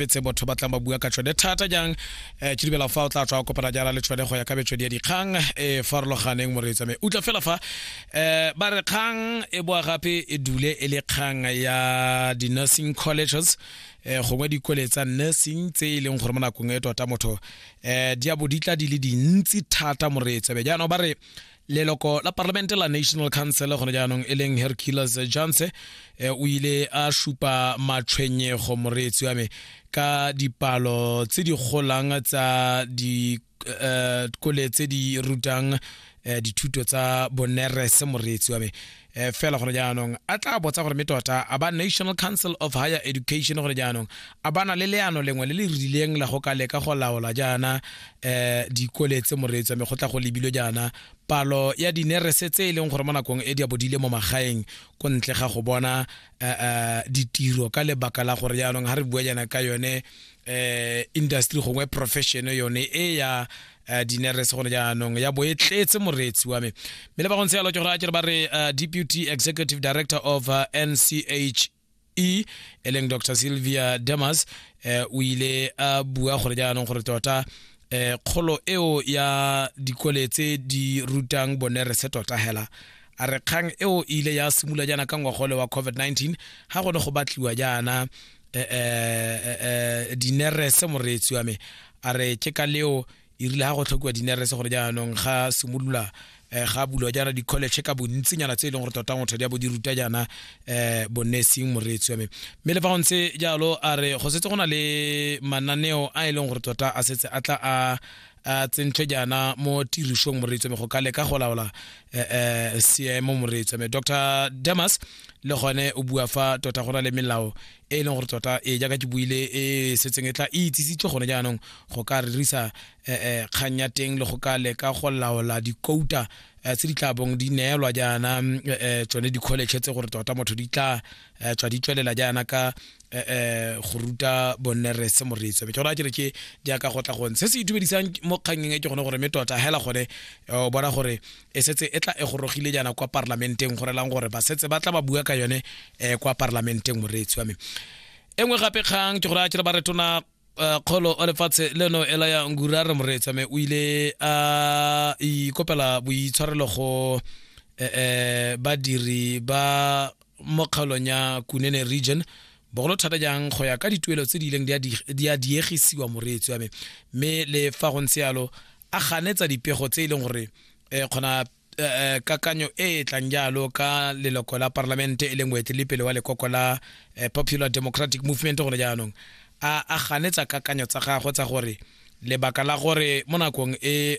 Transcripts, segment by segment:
tse botho ba tlang ba bua ka tšhone thata jang um ke dumela fa o tla tswa kopana jana le tšhone go ya ka metswedi ya dikgang e farologaneng moreetsa me utlwa fela fa um ba re kgang e boa gape e dule e le kgang ya di-nursing colleges um gongwe dikole tsa nursing tse e leng gore mo nakong e tota motho um di a bo di tla di le dintsi thata moreetsa be jaanong ba re leloko la parlamente la national council gone jaanong e leng hercules johnse eh, o ile a supa matshwenyego moreetsi wa me ka dipalo tse di golang tsa dikole eh, tse di rutang eh, dithuto tsa bonerese moreetsi wa me um fela gore jaanong a tla botsa gore me tota a ba national council of higher education gore jaanong a bana le leano lengwe le le rileng la go ka leka go laola jaana um dikole tse moreetsi wa me go tla go lebile jaana palo ya dinerese tse e leng gore mo nakong e di a bodile mo magaeng ko ntle ga go bona um ditiro ka lebaka la gore jaanong ga re bua jaana ka yone um industry gongwe profession yone e ya uh, dinerese gone jaanong ya bo e tletse moreetsi wa me mme le ba gontse yalo ke gore a kere ba re uh, deputy executive director of uh, nch e e leng dr sylvia demas eh, o ile a bua gore jaanong gore tota eh, kgolo eo ya dikole tse di rutang bonerese tota hela a re kgang eo e ile ya simula jaana ka ngwagole wa covid-19 ga gone go batliwa jaana eh, eh, eh, eh, dinerese moreetsi wa me a re ke ka leo e rile ga go tlhokiwa dinerese gore jaanong ga simolola um ga bulwa jaana di-college ka bontsinyana tse e leng gore tota motho di a bo di ruta jaana um bonesing moreetsi wa me mme le fa go ntse jalo a re go setse go na le mananeo a e leng gore tota a setse a tla a a tsentswe jaana mo tirisong moreetsi wa me go ka leka go laola um seemo moreetsi wa me dr demas le gone o bua fa tota go na le melao e e leng gore tota e jaaka ke buile e setseng e tla e itsisitswe gone jaanong go ka rerisa eh, eh, kgang ya teng le go ka leka go laola dikouta eh, tse di tla bong di neelwa jaana mm, eh, eh, tsone di-college tse gore tota motho di tla eh, tswa di tswelela jaana ka eh, eh, go ruta bonnerese moreetso ke gona ke re ke jaaka go tla gone se se itumedisang mo kgangeng e ke gone gore mme tota hela gone eh, o bona gore e setse e tla e gorogile jaana kwa parlamenteng go relang gore ba setse ba tla ba bua ka yone um kwa parlamenteng moreetsi wa me e nngwe gape kgang ke gore a kere ba retona eh, kgolo o lefatshe leno e la ya ngura re moreetsa me o ile a ikopela boitshwarelo go um badiri ba mo kgaolong ya kunene region bogolo thata jang go ya ka dituelo tse di ileng di a diegisiwa moreetsi wa me mme le fa go ntse yalo a ganetsa dipego tse e leng gore um kgona Eh, eh, kakanyo e e tlang jalo ka leloko la parlamente e leng moetelepele wa lekoko la eh, popular democratic movement gone jaanong a a ganetsa kakanyo tsa gagwe tsa gore lebaka la gore mo nakong e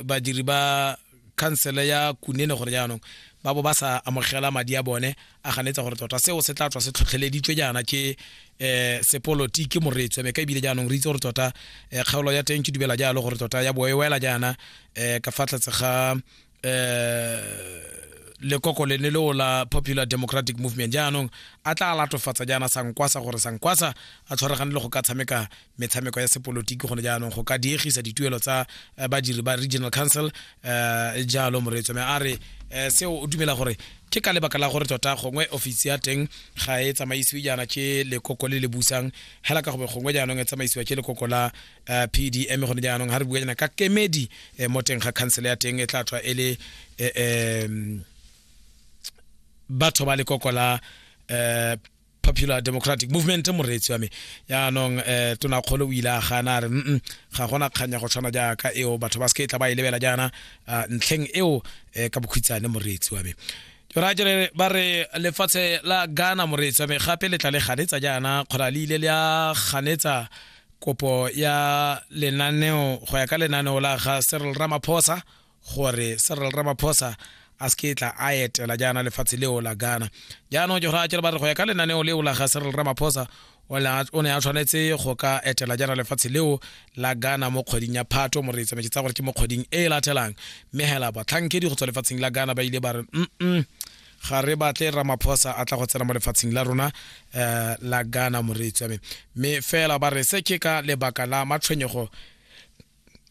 badiri ba khansele ya kunene gore jaanong ba bo ba sa amogela madi a bone a ganetsa gore tota seo se tla tswa se tlhotlheleditswe jaana ke um sepolotiki moreetswe me ka ebile jaanong re itse gore tota um kgaolo ya teng ke dubela jalo gore tota ya boewela jaana um ka fa tlhatse ga um lekoko lene leo la popular democratic movement jaanong a tla latofatsa jaana sankwasa gore sankwasa a tshwaregane le go ka tshameka metshameko ya sepolotiki gone jaanong go ka diegisa dituelo tsa eh, badiri ba regional council um jalo moreetso me a re eh, seo o dumela gore ke ka lebaka la gore tota gongwe ofisi ya teng ga e tsamaisiwe jaana ke lekoko le le busang hela ka gobe gongwe jaanong e tsamaisiwa ke lekoko la um pdm gone jaanong ga re bua jaana ka kemedi um mo teng ga council ya teng e tla tswa e le um batho ba lekoko la um popular democratic movement moreetsi wa me yaanong um eh, tonakgolo o ile a gana a re mm ga gona kganya go tshwana jaaka eo batho ba seke e tla ba e lebela jaana ah, ntlheng eo um ka bokhutshane moreetsi wa me jora jere ba re lefatshe la ghana moreetsi wa me gape le tla le ganetsa jaana kgona le ile le a ganetsa kopo ya lenaneo go ya ka lenaneo la ga serl ramaphosa gore Cyril Ramaphosa a se ke tla a etela jaana lefatshe leo la Ghana jaanong ke gore a kere ba re go ya ka lenaneo leo la ga Cyril Ramaphosa o ne a tshwanetse go ka etela jaana lefatshe leo la Ghana mo kgweding ya Phato mo re e tsamaetse tsa gore ke mo kgweding e e latelang mme hela batlhankedi go tswa lefatsheng la Ghana ba ile ba re mm ga re batle ramaphosa a tla go tsena mo lefatsheng la rona um la ghana moreetsi wa me mme fela ba re se ke ka lebaka la matshwenyego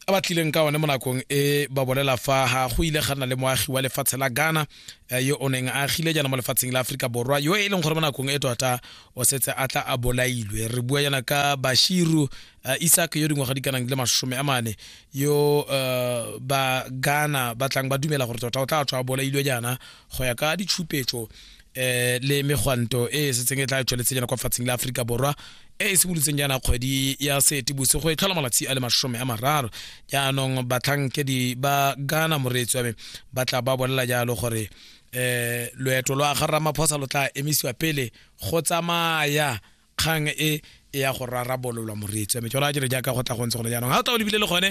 a ba tlileng ka one mo nakong e ba bolela fa ga go ile ga nna le moagi wa lefatshe la ghana eh, yo o neng a agile jaana mo lefatsheng la aforika borwa yo e leng gore mo nakong e tota o setse a tla a bolailwe re bua jaana ka bashiru eh, isak yo dingwaga di kanang le masome a mane yo eh, ba ghana ba tlang ba dumela gore tota o tla tswa a bolailwe jaana go ya ka ditshupetso eh le megwanto e e setseng e tla tsweletse jana kwa fatsing la Afrika Borwa e e simolotseng jana kgwedi ya Seetibose go e tlhola malatsi a le masome a mararo jaanong batlhankedi ba Ghana moreetsi wa me ba tla ba bolela jalo gore eh loeto lwa ga Ramaphosa lo tla emisiwa pele go tsamaya kgang e e ya go rarabololwa moreetsi wa me jalo a jere jaaka go tla go ntse gone jaanong ga o tla o lebile le gone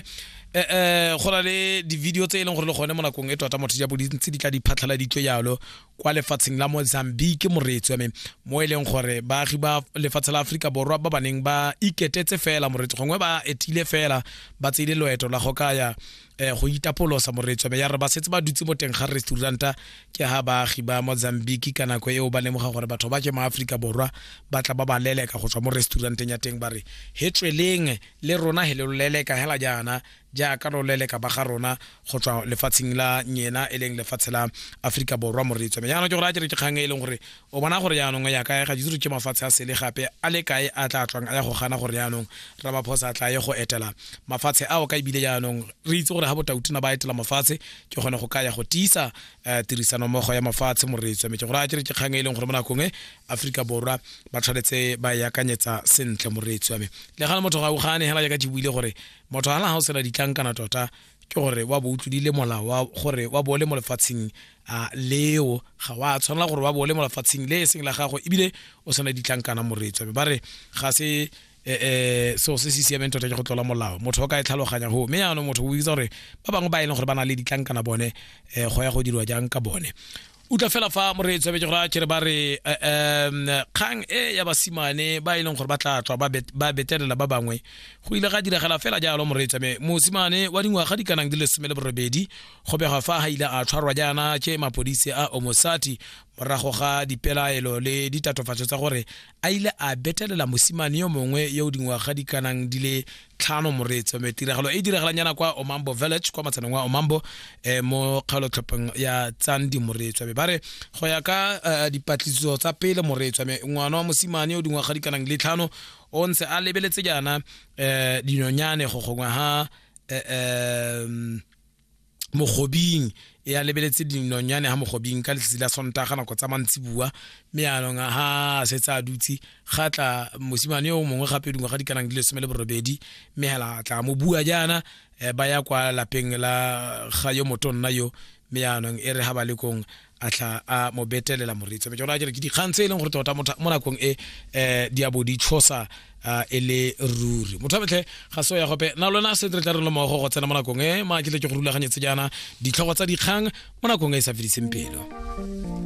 um go na le di-video tse e leng gore le gone mo nakong e tota motho ja bodintsi di tla di phatlhaladitswe jalo kwa lefatsheng la mozambique moreetsi wa me mo e leng gore baagi ba lefatshe la aforika borwa ba baneng ba iketetse fela moreetsi gongwe ba etile fela ba tseile loeto la go kaya eh go itapolosa moretsome ya re ba setse ba dutse mo teng ga restauranta ke ha baagi ba mozambique ka nako eo ba lemoga gore batho ba ke mo aforika borwa ba tla ba ba leleka go tswa mo restauranteng ya teng ba re he tsweleng le rona he le lo leleka hela jaana jaaka lo leleka ba ga rona go tswa lefatsheng la nyena e leng lefatshe la aforika borwa moretsome jaanong ke gore a ke re ke kgang e leng gore o bona gore yaanong ya kae ga ditiro ke mafatshe a sele gape a le kae a tla tswang a ya go gana gore yaanong ramaphosa a tla ye go etela mafatshe ao ka ebile yaanong re itse gore ga botautina ba etela mafatshe ke kgone go ka ya go tiisa eh, tirisanommogo ya mafatshe moreetswa metse gore a kere ke kgang e leng gore mo nakong e aforika borwa ba tshwanetse ba e akanyetsa sentle moreetswa me le gane motho ga o gane hela jaaka ke buile gore motho ga na ga o sena ditlankana tota ke gore wa bo o tlodile molao wa gore wa bo le mo lefatsheng a leo ga wa tshwanela gore wa bo le mo lefatsheng le e seng la gago ebile o tshwana ditlankana moreetso ba re ga se eh, eh, seo se se siameng tota ke go tlola molao motho o ka e tlhaloganya go mme yaanong motho o itsa gore ba bangwe ba e leng gore ba na le ditlankana bone eh, go ya go dirwa jang ka bone utlwa fela fa moreetsi wa bejegora kere ba re um kgang e ya basimane ba e leng gore ba tla tswa ba betelela ba bangwe go ile ga diragala fela jalo moreetsi me mosimane wa dingwaga di kanang di le some le borobedi go begwa fa ga ile a tshwarwa jaana ke mapodisi a omosati morago ga dipelaelo le ditatofatso tsa gore a ile a betelela mosimane yo mongwe yo dingwaga di kanang di le tlhano moreetsi wa metiragalo e diragalang yana kwa omambo village kwa matshaneng wa omambo eh, mo kgaolotlhopheng ya tsandi moreetsi wa me ba re go ya ka eh, dipatlisiso tsa pele moreetsi wa me ngwana wa mosimane o dingwaga di kanang le tlhano o ntse a lebeletse jaana eh, dinonyane go gongwe ha eh, eh, mogobing e a lebeletse dinonyane ha mogobing ka letsatsi la sontaga nako tsa mantsibua mme yaanong ha setse a dutse ga tla mosimane yo mongwe gape dingwe ga di kanang di lesome le borobedi mme hela tla mo bua jaana eh, ba ya kwa lapeng la ga yo motonna yo mme yaanong e re ga ba le kong a tlha a mo betelela moreetsi be jalo a jere ke dikgang tse e leng gore tota mo nakong e um di abo di tshosa um e le ruri motho a betlhe ga se ya gope na lona se re tla re le mogo go tsena mo nakong e ma ke tle ke go rulaganyetse jaana ditlhogo tsa dikgang mo nakong e e sa fediseng pelo